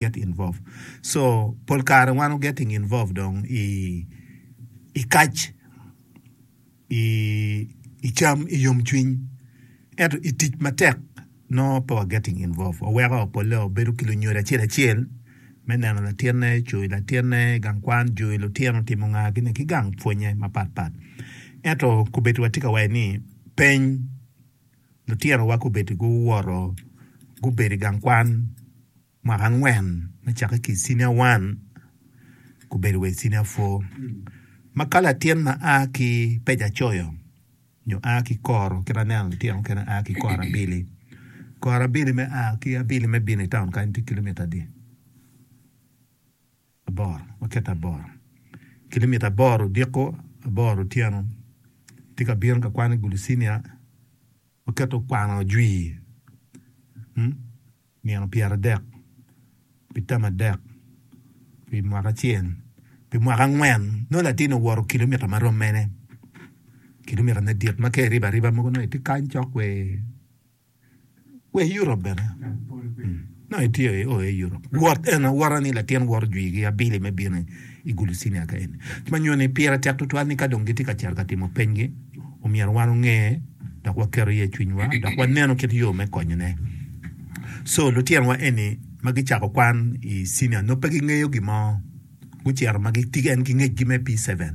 get involve so pol kare wan wu getting involve dong i i kac i i cam i yom cwiny ento i tic matek nongo pe wa getting involve waweko pole wabedo ki lunyodo acel acel me neno latinne coyo latinne i gang kwan joyo lutino timo nga gine ki gang pwonye mapat pat ento kobedo wa tye ka waco ni peny Lutinowa gubedo guwoto gubedo i gang kwan mwaka angwen me cakke ki i cinia wan gubedo wa i cinia pwo ma ka latin ma a ki pejacoyo nyo a ki i koro kit ma aneno lutino mukene a ki i koro abili, koro abili me a ki abili me bino i taun kany tye kilomitta adi? Aboro, waketo aboro kilimita aboro odiko, aboro otyeno. Tye ka bino ka kwano i Gulucinia, waketo kwano ajwi, mm, nino pyeradek, pi tam adek, pi mwaka acel, pi mwaka angwen, nongo latin owoto kilimita ma rom mene? Kilimita madit ma ka iribo ariba mogo nongo itye kany cok wee. Wa i Europe bene. Nongo itye i oa i Europe. Wot en awota ni latin woro jwi gi abili me bino i Gulucinia ka eni. Ma nyuto ni pire tek tutwal ni ka dong gitye ka cito ka timo peny gi, omyero wan onge dok waketo iye cwiny wa dok waneno kit yo me konyo ne. So lutino wa eni ma gicako kwan i cinia nongo pe gingeyo gin mo. Gucito ma gitye en ki ngec gi me P7.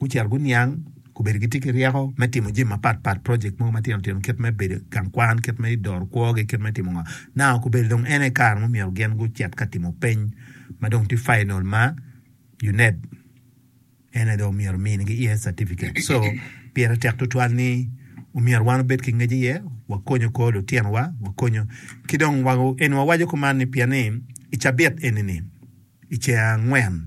gucito guniang, gubedo gitye ki ryeko me timo jami mapat pat, project mogo matino tino kit me bedo i gang kwan, kit me doro kwogi, kit me timo ngo. Now gubedo dong en aye kare ma myero gin gucit ka timo peny ma dong tye final ma UNEB en aye dong myero minigi iye certificate. So pire tek tutwal ni omyero wan obed ki ngec iye, wakonyo kor lutinowa, wakonyo ki dong eni wawaco kuman ni pien ni i cabit eni-ni, i ceng angwen,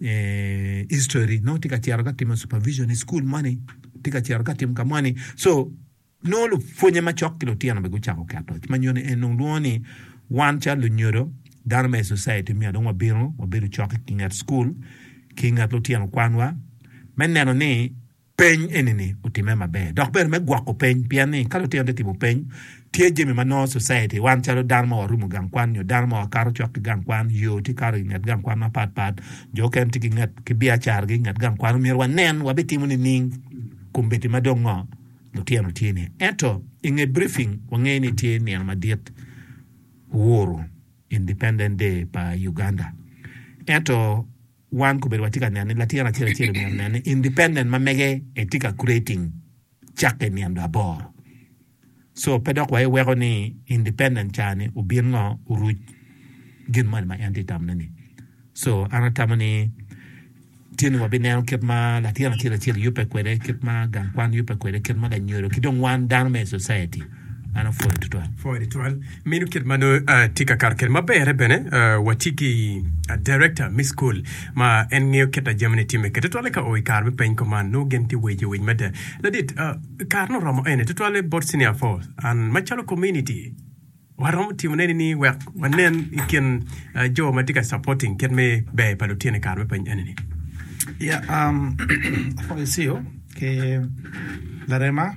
history nongo tye ka cito ka timo supervision i school moni tye ka cito ka timo ka moni so nongo lupwonye macok ki lutino bene gucako keto ma nyoni en nongo lwongo ni wan calo lunyodo dano me society me adong wabino wabedo cok i nget school ki nget lutino kwanwa me neno ni Peny eni-ni otimme maber dok bedo me gwoko peny pien ni ka lutino te timo peny, tye jami ma nongo society wan calo dano ma warumo gang kwan nyo dano ma wakato cok ki gang kwan, yo tye kato inget gang kwan mapat pat, jo okene tye ki nget ki biacara gi inget gang kwan omyero wanen wabitimo nining? Kombeddi ma dong ngo lutino tye ni ento inge briefing wangeyo ni tye nino madit Uhuru Independent Day pa Uganda ento Wan kobedo watye ka neno ni latin acel acel omyero onen ni independent ma mege e tye ka creating cakke i nino aboro. So pe dok waiweko ni independent ca ni obin ngo oruc gin moni ma en tye tamo ne ni. So an atamo ni tye ni wabineno kit ma latin acel acel yubbe kwede, kit ma gang kwan yubbe kwede, kit ma lanyodo ki dong wan dano me i society. An apwoyo tutwal. Pwoyo tutwal. Meno kit ma nongo atye ka kato kede. Ma bere bene watye ki director me school ma en ngeyo kit ma jamine timme kede. Tutwalle ka o i kare me peny ko man nongo gin tye wejo winy mada. Ladit, kare ni oromo ene tutwalle bot senior four. An macalo community waromo timo ne ni wek wanen i kin jo ma tye ka supporting kit me ber pa lutino i kare me peny ene ni. Yeah, um, apwoyo Ceo ki Larema.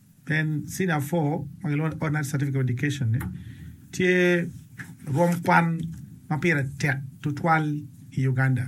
Then Senior Four ma gilwongo ni Ordinary Certificate of Education ni tye rwom kwan ma pire tek tutwal i Uganda.